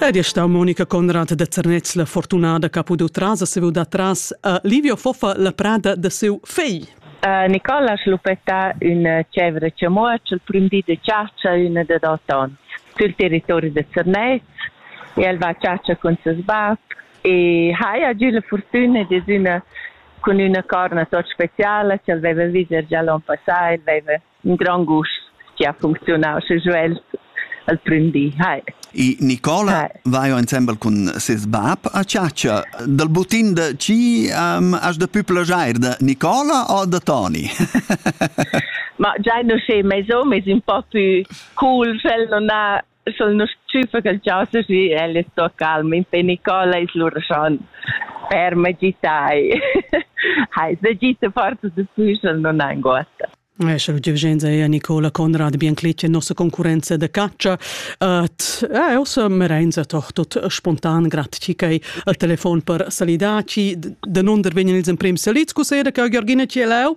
Ed è stà Monica Conrad da Zernez la fortunada che ha pudù tras a siu da tras a Livio Foffa la prada da siu fegl. Uh, Nicola ha schluppetà üna cevra chamuotsch il prim di da chatscha üna da dot ons sül territori da Zernez e el va a chatscha cun ses bab e haja giù la fortuna de üna cun üna corna tot speciala che el veva viser già l'on passà, el veva in grand gust che ha funcziunau, sche jeu els, els prendi. Hi. E Nicola vai ensemble cun ses bab a chatscha. Dal butin da chi um, has da più plagiar da Nicola o da Toni? Ma già non sei mai so, ma è un po' più cool, sch'el non ha Sul nos tschüffa ch'el chasa sü, el es sto calm. In pe Nicola es lura schon per magitai. Hai, da gita forza da füsel non anguotta. Eh, Sche l'udievgenza è Nicola Conrad Bianclit, nostra concorrenza de caccia. Et, eh, ossa merenza toch tot spontan graticei al telefon per salidaci. De non der vegnan ils emprem salids, cu sera che Georgina ci è leu?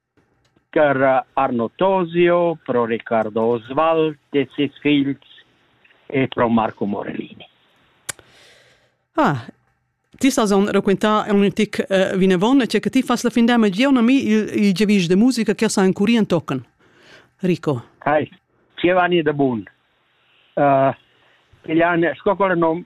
Chara Arno Tosio, pro Riccardo Oswald e ses figls e pro Marco Morellini. Ah, ti sas on raquintà un tic uh, vinavon, cioè che ti fas la fin d'anno, già a mi il, il giavisch de musica che sa ancora in tocan. Rico. Hai, Giovanni de Bun. Uh, Piglian, sco quel nom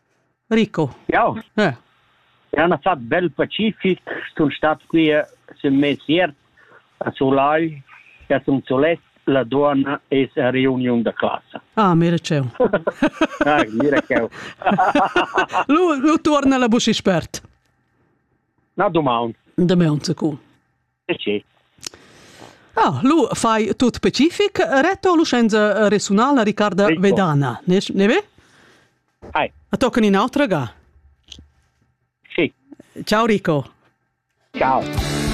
Rico. Jau. Eh. Era na fa bel pacific, sun stat qui sün mes iert a Sulai, che sun solet, la duonna es a reuniun da classa. Ah, mira cheu. ah, mira cheu. lu, lu tuorna la buschi spert. Na, domaun. Domaun, cu. Ah, lu fai tut specific. Reto Lucenza resunala Riccarda Rico. Vedana, ne, ne ve? Hai. A toccano in altra ga? Sì. Ciao Rico. Ciao.